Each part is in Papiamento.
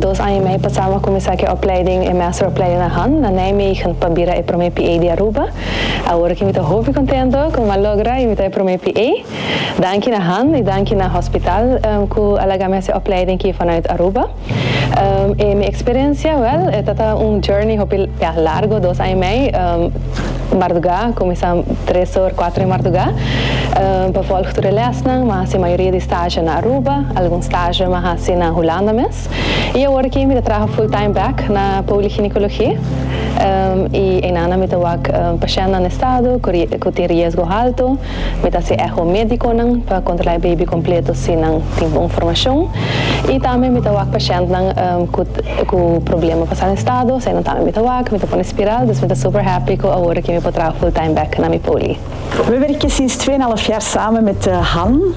Dos aña i mei pasá mi a kuminsá ku e opleiding, e measteropleiding na Hann, na Nijmegen, pa bira e promé PA di Aruba. Awor aki mi ta hopi kontento ku mi a logra i mi ta e promé PA. Danki na Hann i danki na hospital ku a laga mi hasi e opleiding aki vanuit Aruba. E mi experiencia? Wel, e tabata un journey hopi ya largo, dos aña y mei marduga, cuminsa tres or, cuatro di marduga pa volg tur e lesnan. Mi a haci mayoria di stage na Aruba, algun stage mi a haci na Hulanda mes y awor aki mi ta traha full time back na poliginecologie y einanan mi ta wak pashentnan estado cu tin riesgo halto. Mi ta haci echo médiconan pa controla e baby completo si nan tin bon formacion. Y tambe mi ta wak pacientnan cu problema pa sal en estado, eseinan tambe mi ta wak, mi ta pone spiral, dus mi ta super happy cu awor aki mi por traha full time back na mi poli. Weber y Kissy Stwena lo fiar samen met Han.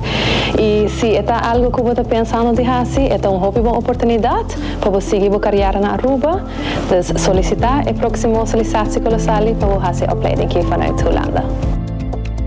I si e ta algu ku bo ta pensando di hasi, e ta un hopi bon oportunidat pa bo sigui bo kariera na Aruba. Dus solisitá e próksimo solisatiekolosali pa bo hasi e opleiding aki vanuit Hulanda.